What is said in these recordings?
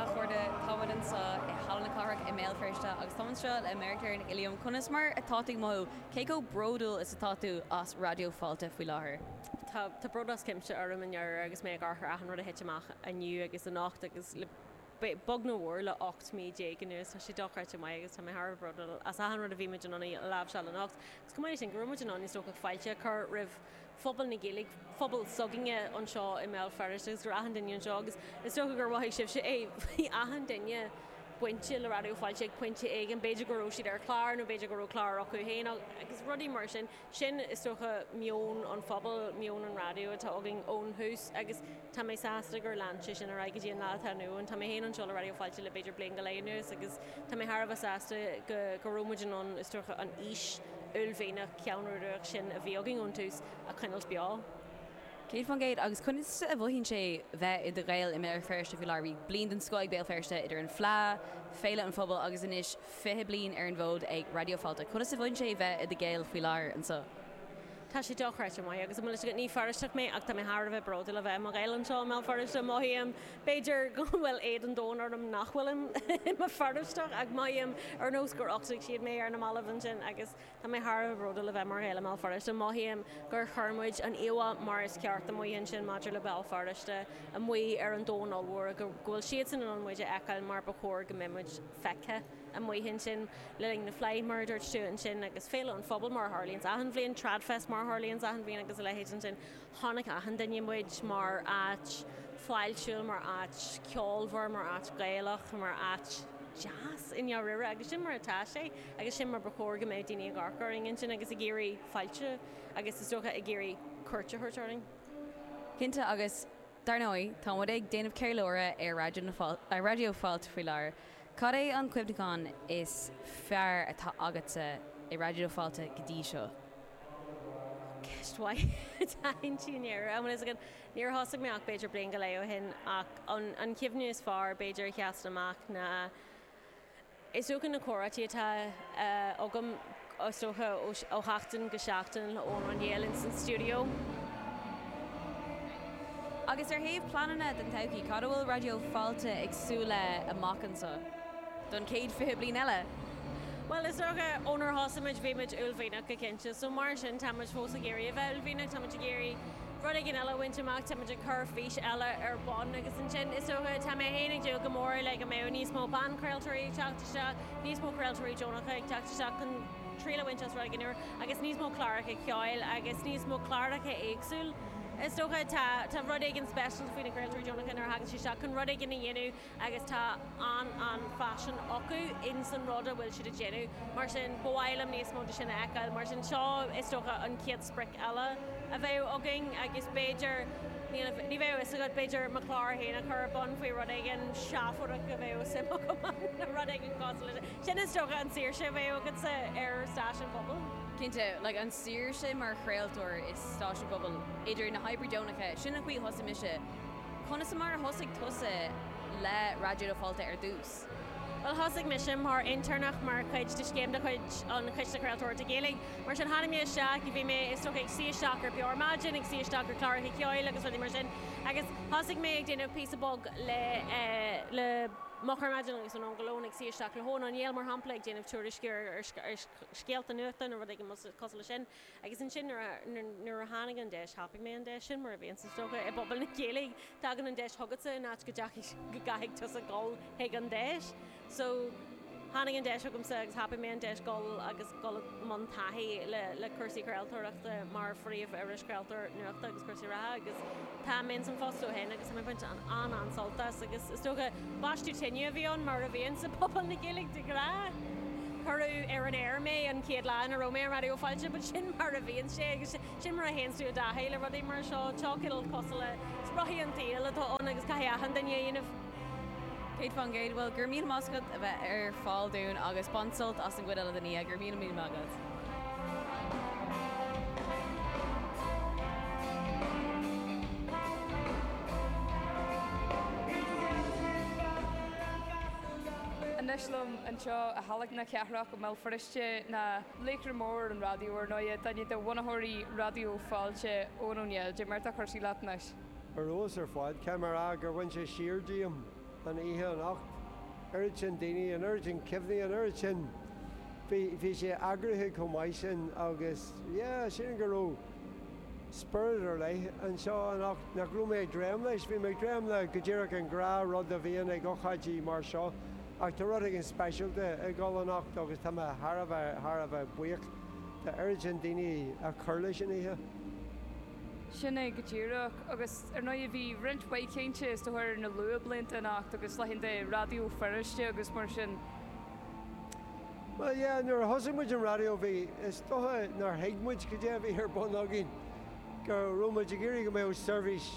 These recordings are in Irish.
Athchóirithe Táimid anseo i Halla na Cathrach i mBéal Feirste agus táim anseo le Marie-Claire Nic Uilliam. Conas mar atá tú ag mothú? Cé chomh bródúil is atá tú as Raidió Fáilte faoi láthair? Tá bród as cuimse orm i ndáiríre agus mé ag amharc ar achan rud a thit amach inniu agus anocht agus le beag nó mhór le 18 mí anuas. Tá sé dochreidte maith agus tá mé thar a bheith bródúil as achan rud a bhí muid in ann a láimhseáil anocht. Chomh maith leis sin go raibh muid in ann, is dócha, fáilte a chur roimh phobal na Gaeilge, phobal s'againne anseo i mBéal Feirste agus go raibh achan duine anseo agus is dócha gur mhothaigh sibhse é, bhí achan duine bainte le Raidió Fáilte ag pointe éigin, b'fhéidir go raibh siad ar chlár nó b'fhéidir go raibh clár acu féin agus rudaí mar sin. Sin, is dócha, meon an phobail, meon an raidió atá againn ón thús agus. Tá mé sásta gur lean sé sin ar aghaidh go dtí an lá atá inniu ann. Tá mé féin anseo le Raidió Fáilte le b'fhéidir bliain go leith anuas agus tá mé thar a bheith sásta go raibh muid in ann, is dócha, an fhís uaillmhianach cheannródaíoch sin a bhí againn ón tús a choinneáilt beo. Céad faoin gcéad. Agus conas a mhothaíonn sé bheith i do Ghael i mBéal Feirste faoi láthair? Bhí bliain den scoth ag Béal Feirste idir an Fleá, Féile an Phobail agus anois fiche bliain ar an bhfód ag Raidió Fáilte. Conas a mhothaíonn sé bheith i do Ghael faoi láthair anseo? Tá sé dochreidte maith agus an bhfuil fhios agat, ní Feirsteach mé ach tá mé thar a bheith bródúil a bheith i mo Ghael anseo i mBéal Feirste. Mothaím, b'fhéidir, go bhfuil éad an domhain orm nach bhfuil i mo Feirsteach ach mothaím ar nós gur uchtaigh siad mé ar na mallaibh ansin agus tá mé thar a bheith bródúil a bheith mar Ghael i mBéal Feirste. Mothaím gur chuir muid an íomhá mar is ceart amuigh ansin maidir le Béal Feirste amuigh ar an domhan ollmhór go bhfuil siadsan in ann muid a fheiceáil mar ba chóir go mbeadh muid feicthe. amuigh ansin le linn na Fleidhe mar a dúirt tú ansin agus Féile an Phobail mar a tharlaíonns achan bhliain, Tradfest mar a tharlaíonns achan bhliain agus a leithéid ansin. Chonaic achan duine muid mar áit fáiltiúil, mar áit cheolmhar, mar áit Ghaelach, mar áit deas i ndáiríre agus sin mar atá sé agus sin mar ba chóir go mbeadh daoine ag amharc orainn ansin agus ag iarraidh fáilte agus is dócha ag iarraidh cuairt a thabhairt orainn. Cinnte agus Dar ndóigh, tá muid ag déanamh ceiliúradh ar Raidió Fáilte faoi láthair. Cad é an cuimhneachán is fearr atá agatsa i Raidió Fáilte go dtí seo? Ceist mhaith atá ansin i ndáiríre, an bhfuil a fhios agat, níor thosaigh mé ach b'fhéidir bliain go leith ó shin, ach an cuimhne is fearr b'fhéidir a sheasann amach ná, Is dócha na comhráití atá agam is dócha ó sheachtain go seachtain le Eoghan Ó Néill ins an stiúideo. Agus ar thaobh pleananna don todhchaí, cad a bhfuil Raidió Fáilte ag súil le amach anseo, don chéad 20 bliain eile? Bhuel, is dócha ó nuair a thosaigh muid bhí muid uaillmhianach go cinnte, so mar sin tá muid fós ag iarraidh a bheith uaillmhianach, tá muid ag iarraidh rud éigin eile a bhaint amach, táimid ag cur fís eile ar bun agus ansin is dócha, tá mé féin ag dúil go mór leis go mbeadh níos mó banchraoltóirí ag teacht isteach, níos mó craoltóirí deonacha ag teacht isteach chun triail a bhaint as rud éigin úr agus níos mó cláracha ceoil agus níos mó cláracha éagsúil. Is dócha, tá rud éigin speisialta faoi na craoltóirí deonacha nuair a thagann siad isteach chun rud éigin a dhéanamh, agus tá an-an-phaisean acu ins an rud a bhfuil siad ag déanamh. Mar sin, ba mhaith liom níos mó de sin a fheiceáil. Mar sin, so is dócha an chéad sprioc eile a bheadh againn agus b'fhéidir, níl, ní bheadh a fhios agat, b'fhéidir mo chlár féin a chur ar bun faoi rud éigin seafóideach a bheadh suim agam ann nó rud éigin cosúil leis sin. Sin is dócha an saoirse a bheadh agatsa ar stáisiún pobail. Cinnte, like an saoirse mar chraoltóir i stáisiún pobail, idir na hoibrithe deonacha, sin an chaoi a thosaigh mise, Conas mar a thosaigh tusa le Raidió Fáilte ar dtús? Bhuel, thosaigh mise mar intéirneach mar chuid de scéim de chuid an Chiste Chraoltóireachta Gaeilge. Mar sin, tháinig mé isteach, bhí mé, is dócha, ag suí isteach ar Beo Ar Maidin, ag suí isteach ar chláracha ceoil agus rudaí mar sin agus thosaigh mé ag déanamh píosa beag le, eh, le Moch Ar Maidin agus anonn go lón, ag suí isteach le hEoghan Ó Néill, mar shampla, ag déanamh tuairisciú ar, ar, ar scéalta nuachta nó rud éigin cosúil leis sin. Agus ansin, nuair a tháinig an deis, thapaigh mé an deis sin, mar a bhíonns, is dócha, i bpobal na Gaeilge. Tagann an deis chugatsa in áit go gcaithfidh tusa dhul chuig an deis. So, tháinig an deis chugamsa agus thapaigh mé an deis dhul agus dhul i mbun taithí le cúrsaí craoltóireachta mar phríomh-irischraoltóir nuachta agus cúrsaí reatha agus, Tá mé ins an phost ó shin agus tá mé ag baint an-an-sult as agus is dócha baisteadh tine a bhí ann mar a bhíonn sa phobal na Gaeilge de ghnáth. Cuireadh ar an aer mé an chéad lá ina raibh mé ar Raidió Fáilte but sin mar a bhíonn sé agus sin mar a théanns tú i dtaithí le rudaí mar seo. Seo cineál cosúil le rothaí an tsaoil atá ann agus caithfidh achan duine a dhéanamh. 100% bhuel go raibh míle maith agat as a bheith ar fáil dúinn agus bain sult as an gcuid eile den oíche. Go raibh míle míle maith agat. Anois liom anseo i Halla na Cathrach i mBéal Feirste tá laoch mór an raidió, ar ndóigh, duine de bhunaitheoirí Raidió Fáilte, Eoghan Ó Néill. Cad é mar atá cúrsaí leat anois? Ar fheabhas ar fad cé mar a gur baineadh siar díom an oíche anocht. oiread sin daoine, an oiread sin cuimhní, an oiread sin. bhí, bhí sé eagraithe chomh maith sin agus, yeah, sílim go raibh spiorad ar leith anseo anocht nach raibh mé ag dréim leis. Bhí mé ag dréim le go díreach an gnáthrud a bhíonn ag ocáidí mar seo ach tá rud éigin speisialta ag dhul anocht agus tá mé thar a bheith, thar a bheith buíoch de oiread sin daoine a chur leis an oíche. Sin é go díreach. Agus ar ndóigh bhí roinnt mhaith cainte, is dócha, ar na luathbhlianta anocht agus laethanta Raidió Feirste agus mar sin. Bhuel, yeah, nuair a thosaigh muid an raidió bhí, is dócha nár thuig muid cad é a bhí ar bun againn, go raibh muid ag iarraidh go mbeadh seirbhís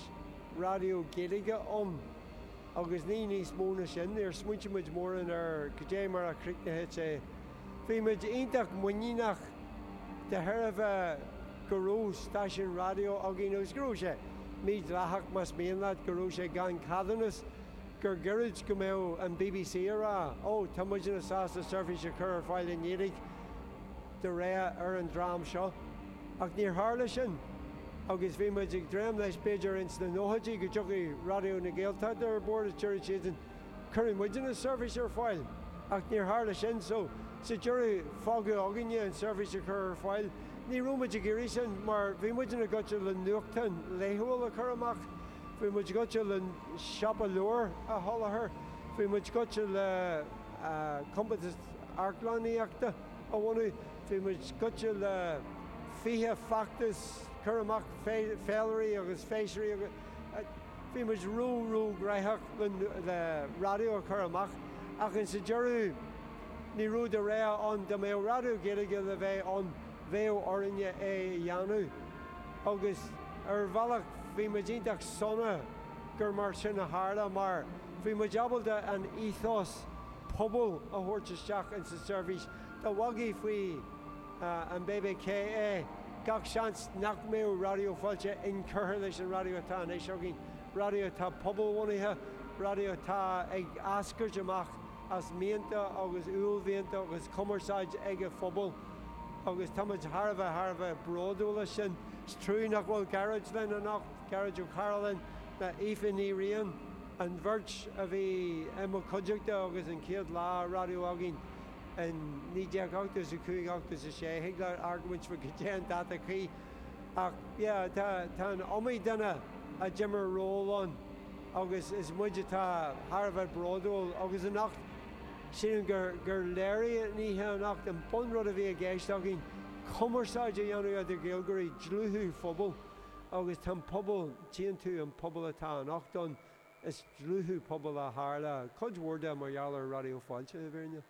raidió Gaeilge ann agus ní níos mó ná sin. Níor smaointigh muid mórán ar cad é mar a chríochnadh sé. Bhí muid iontach muiníneach de thairbhe go raibh stáisiún raidió againn agus go raibh sé mídhleathach, más mian leat, go raibh sé gan ceadúnas, gur gairid go mbeadh an bbc a rá, Ó, tá muidne sásta seirbhís a chur ar fáil i nGaeilge de rogha ar an dream seo. Ach níor tharla sin agus bhí muid ag dréim leis b'fhéidir ins na nóchaidí go dtiocfadh Raidió na Gaeltachta ar bord agus déarfadh siadsan, Cuirfidh muidne seirbhís ar fáil, ach níor tharla sin, so sa deireadh fágadh againne an tseirbhís a chur ar fáil. Ní raibh muid ag iarraidh sin mar bhí muid inár ngaibhte le nuachtán laethúil a chur amach, bhí muid gaibhte le siopa leabhar a sholáthar, bhí muid gaibhte le compántas amharclannaíochta a bhunú, bhí muid gaibhte le fiche feachtas cur amach, féilirí agus féisirí. Bhí muid ró ró gnoitheach le raidió a chur amach ach insa deireadh ní raibh de rogha ann. Dá mbeadh Raidió Gaeilge le bheith ann bheadh orainne é a dhéanamh agus ar bhealach bhí muid iontach sona gur mar sin a tharla mar bhí muid ábalta an ethos pobail a thabhairt isteach ins an tseirbhís. Dá bhfágfaí faoi. an BBC é, gach seans nach mbeadh Raidió Fáilte inchurtha leis an raidió atá anois againn, raidió atá pobalbhunaithe, raidió atá ag eascairt amach as mianta agus uaillmhianta agus cumarsáid an phobail, agus táimid thar a bheith, thar a bheith bródúil as sin. Is trua nach bhfuil Gearóid linn anocht, Gearóid Ó Cairealláin, Aoife Ní Riain, an bheirt a bhí i mo chuideachta ag an chéad lá raidió againn. in 1980 is 5 80 is 6 thig leat argóint faoi cad é an dáta cuí ach yeah tá tá an iomaí duine a d'imir ról ann agus is muid atá thar a bheith bródúil agus anocht sílim gur gur léirigh an oíche anocht an bun rud a bhí i gceist againn cumarsáid a dhéanamh idir Gaeilgeoirí dlúthú pobail agus tá an pobal tchíonn tú an pobal atá anocht ann Is dlúthú pobail a tharla cuid mhór de, mar gheall ar Raidió Fáilte, i bhfírinne.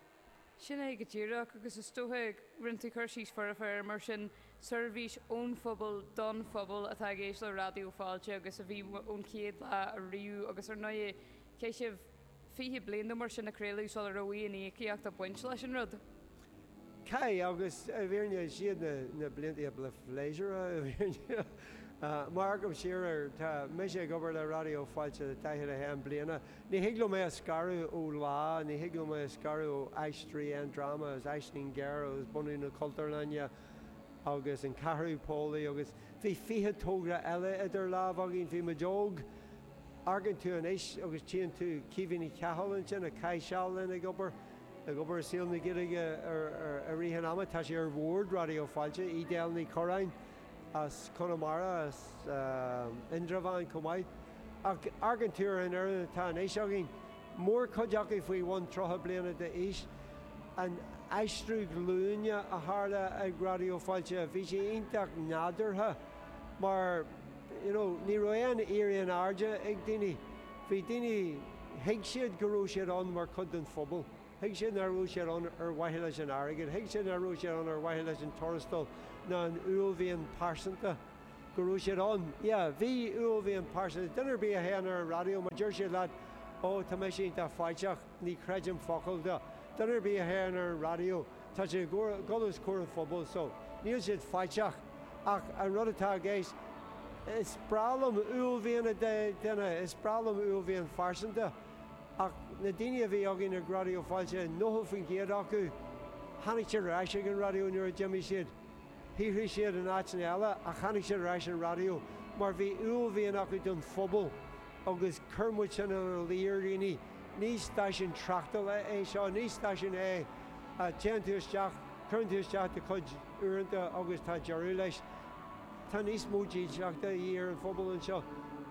Sin é go díreach, agus is dócha go rinne tú cur síos foirfe air mar sin, seirbhís ón phobal don phobal atá i gceist le Raidió Fáilte agus a bhí ón chéad lá ariamh agus ar ndóigh chaith sibh 20 bliain nó mar sin ag craoladh sula raibh aon íocaíocht ag baint leis an rud. Cai, agus i bhfírinne is iad na blianta ba phléisiúrtha i bhfírinne. Má amharcaim siar air, tá mise ag obair le Raidió Fáilte le 41 bliana. Ní thig liom é a scaradh ó Lá, ní thig liom é a scaradh ó Aisteoirí an Dráma is Aisling Ghéar agus bunú na Cultúrlainne agus an Ceathrú Póilí agus bhí fiche togra eile idir lámh againn, bhí muid óg. Amharcann tú anois agus tchíonn tú Caoimhe Ní Chathail ansin a chaith seal linn ag obair. Ag obair i saol na Gaeilge i rith an ama, tá sí ar Bhord Raidió Fáilte, Edel Ní Churraoin as Conamara as Indreabhán chomh maith, ach amharcann tú ar an fhoireann atá anois againn, mórchuid acu faoi bhun 30 bliana d'aois. An aistriú glúine a tharla ag Raidió Fáilte, bhí sé iontach nádúrtha mar. you know ní raibh aon éirí in airde ag daoine bhí daoine thuig siad go raibh siad ann mar chuid den phobal thuig siad ná raibh siad ann ar mhaithe leis an airgead thuig siad ná raibh siad ann ar mhaithe leis an tuarastal ná an uaillmhian pearsanta go raibh siad ann yeah bhí uaillmhian pearsanta duine ar bith a théann ar an raidió má deir siad leat oh tá mise iontach faiteach Ní chreidim focal de. Duine ar bith a théann ar an raidió, tá sé ag dul os comhair an phobail so níl siad faiteach. Ach an rud atá i gceist, is breá liom uaillmhian duine, is breá liom uaillmhian phearsanta, ach na daoine a bhí againn ag Raidió Fáilte, 90% acu, tháinig siad ar ais ag an raidió nuair a d'imigh siad. shaothraigh siad in áiteanna eile ach tháinig siad ar ais ar an raidió mar bhí uaillmhian acu don phobal agus chuir muid sin ina luí ar dhaoine, ní stáisiún tráchtála é seo, ní stáisiún é a dtéann tú isteach, cuireann tú isteach do chuid uaireanta agus tá deireadh leis. Tá níos mó dílseachta de dhíth ar an phobal anseo.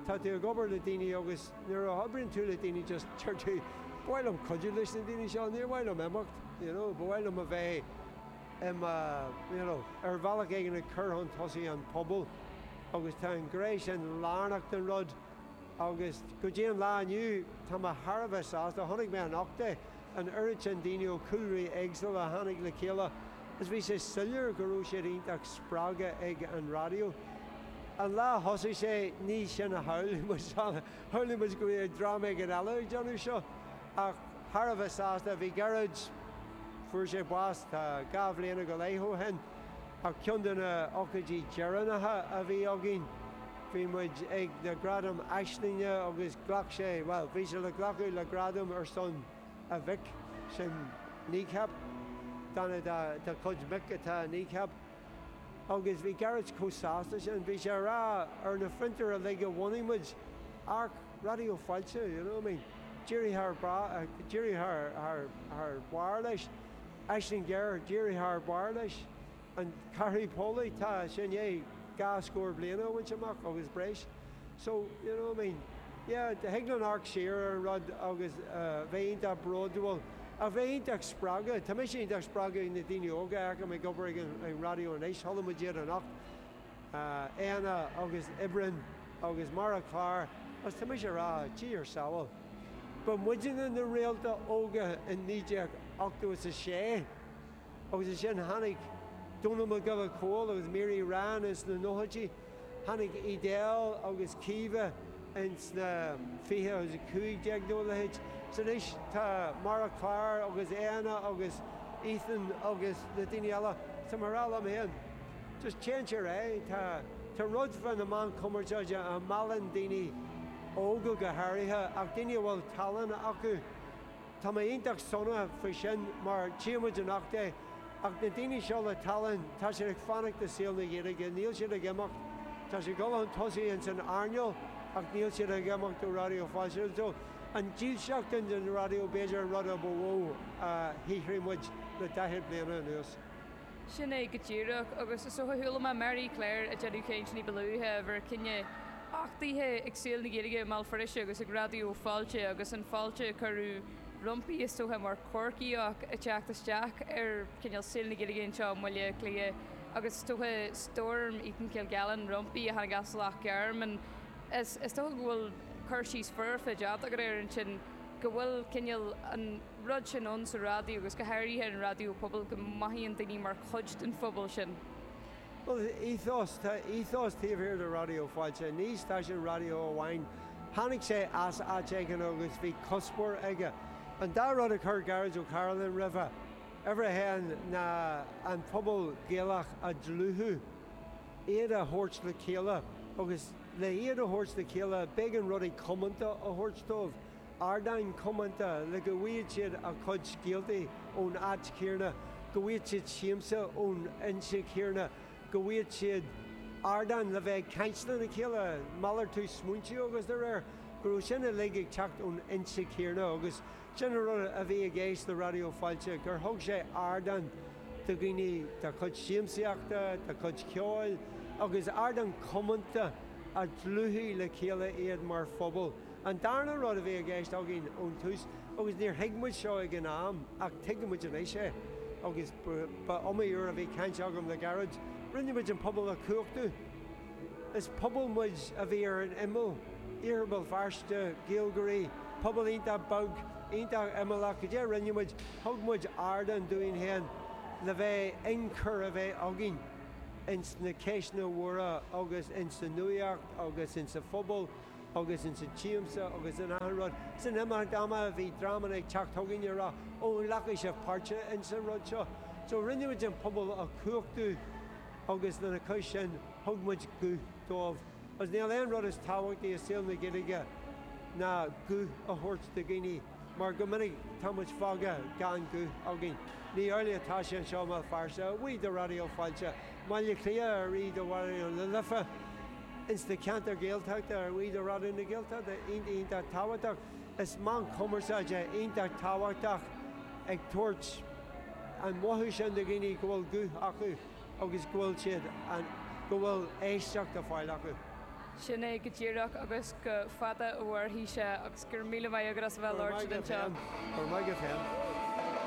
Tá tú ag obair le daoine agus nuair a oibríonn tú le daoine just deir tú 'ba mhaith liom cuidiú leis na daoine seo, níor mhaith liom imeacht, you know, ba mhaith liom a bheith i mo, you know, ar bhealach éigin ag cur chun tosaigh an pobal agus tá an ghné sin lárnach den rud agus go dtí an lá inniu tá mé thar a bheith sásta, chonaic mé anocht é, an oiread sin daoine ó chúlraí éagsúla a tháinig le chéile agus bhí sé soiléir go raibh siad iontach spreagtha ag an raidió. An lá a thosaigh sé ní sin a shamhlaigh muid, shamhlaigh muid go mbeadh dream éigin eile ag déanamh seo ach, Thar a bheith sásta a bhí Gerard. Fuair sé bás tá dhá bhliana go leith ó shin, ach ceann de na hócáidí deireanacha a bhí againn. Bhí muid ag na gradaim Aislinge agus ghlac sé, bhuel, bhí sé le glacadh le gradam ar son a mhic, sin Kneecap. Duine dá chuid mic atá Kneecap. Agus bhí Gerard chomh sásta sin, bhí sé a rá ar na fiontair uilig a bhunaigh muid, amharc, Raidió Fáilte, you know, I mean, d'éirigh thar barr, d'éirigh thar, thar, thar barr leis. Aisling Ghéar, d'éirigh thar barr leis. An Cheathrú Póilí, tá, sin é, dhá scór bliain a bhaint amach agus breis. So, you know, I mean, yeah, thig linn amharc siar ar an rud agus bheith iontach bródúil ach bheith iontach spreagtha. Tá mise iontach spreagtha ag na daoine óga a fheicim ag obair ag an raidió anois, chuala muid iad anocht. Éanna agus Oibreán agus Mara Clár agus tá mise a rá tabhair samhail. Ba muidinne na réalta óga i naoi déag ochtó is a sé agus ansin tháinig Dónall Mac Giolla Chóill agus Mary Ryan ins na nóchaidí, tháinig Edel agus Caoimhe ins na fiche agus a cúig déag nó a leithéid. So anois tá Mara Clár agus Éanna agus Ethan agus na daoine eile. Tá mé a rá liom féin. Just change your eye. Tá rud faoi na meáin chumarsáide a mheallann daoine óga go háirithe, ach daoine a bhfuil tallann acu. Tá mé iontach sona faoi sin mar tchíonn muid anocht é, ach na daoine seo le tallann, tá siad ag fanacht i saol na Gaeilge, níl siad ag imeacht. Tá siad ag dul chun tosaigh ins an earnáil ach níl siad ag imeacht ó Raidió Fáilte. So an dílseacht sin don raidió b'fhéidir an rud a ba mhó a shaothraigh muid le daichead bliana anuas. Sin é go díreach, agus is dócha, chuala mé Mary Claire ag déanamh caint ní ba luaithe, ar bhur gcinneadh, a taithí ag Saol na Gaeilge i mBéal Feirste agus ag Raidió Fáilte agus an fáilte a cuireadh roimpi is dócha mar Chorcaíoch ag teacht isteach ar chineál Saol na Gaeilge anseo i mBaile Átha Cliath agus is dócha Storm Eaton-Kilgallen roimpi a tháinig as Loch Garman. Is dócha go bhfuil cur síos foirfe déanta agat air ansin, go bhfuil cineál an. rud sin ann sa raidió agus go háirithe an raidió pobail, go mothaíonn daoine mar chuid den phobal sin. Bhuel, ethos, tá ethos taobh thiar de Raidió Fáilte. Ní stáisiún raidió amháin. Tháinig sé as áit éigin agus bhí cuspóir aige. An dá rud a chuir Gearóid Ó Cairealláin roimhe, uimhir a haon, ná an pobal Gaelach a dhlúthú, iad a thabhairt le chéile agus le hiad a thabhairt le chéile b'éigean rudaí comónta a thabhairt dóibh, ardáin chomónta le go bhfaigheadh siad a gcuid scéaltaí ón áit chéarna, go bhfaigheadh siad siamsa ón fhoinse chéarna, go bhfaigheadh siad ardán le bheith ag caint lena chéile, malartú smaointe agus dá réir, go raibh sin uilig ag teacht ón fhoinse chéarna agus sin an rud a bhí i gceist le Raidió Fáilte, gur thug sé ardán do dhaoine dá gcuid siamsaíochta, dá gcuid ceoil agus ardán comónta a dhlúthaigh le chéile iad mar phobal. An darna rud a bhí i gceist againn ón tús, agus níor thuig muid seo ag an am ach tuigeann muid anois é, agus ba iomaí uair a bhí caint agam le gairid, rinne muid an pobal a chumhachtú. Is pobal muid a bhí ar an imeall, Iarthar Bhéal Feirste, Gaeilgeoirí, pobal iontach beag, iontach imeallach, go dté a rinne muid, thug muid ardán dúinn féin le bheith inchur a bheith againn ins na ceisteanna móra agus insa nuaíocht agus insa phobal. agus ins an tsiamsa agus in achan rud. So in imeacht ama bhí dreamanna ag teacht chugainn ag rá Ó, an nglacfaidh sibh páirt ins an rud seo? So rinne muid an pobal a chumhachtú agus lena chois sin thug muid guth dóibh agus níl aon rud is tábhachtaí i saol na Gaeilge ná guth a thabhairt do dhaoine mar go minic tá muid fágtha gan guth againn. Ní amhlaidh atá sé anseo i mBéal Feirste, a bhuí do Raidió Fáilte, mBaile Cliath, a bhuí do Raidió na Life, ins na ceantair Ghaeltachta a bhuí do Raidió na Gaeltachta iontach iontach tábhachtach. Is meán cumarsáide iontach tábhachtach ag tabhairt an mhothú sin do dhaoine go bhfuil guth acu agus go bhfuil siad an, go bhfuil éisteacht a fáil acu. Sin é go díreach agus go fada a mhairfidh sé agus go raibh míle maith agat as a bheith a labhairt linn anseo. Go raibh maith agat féin.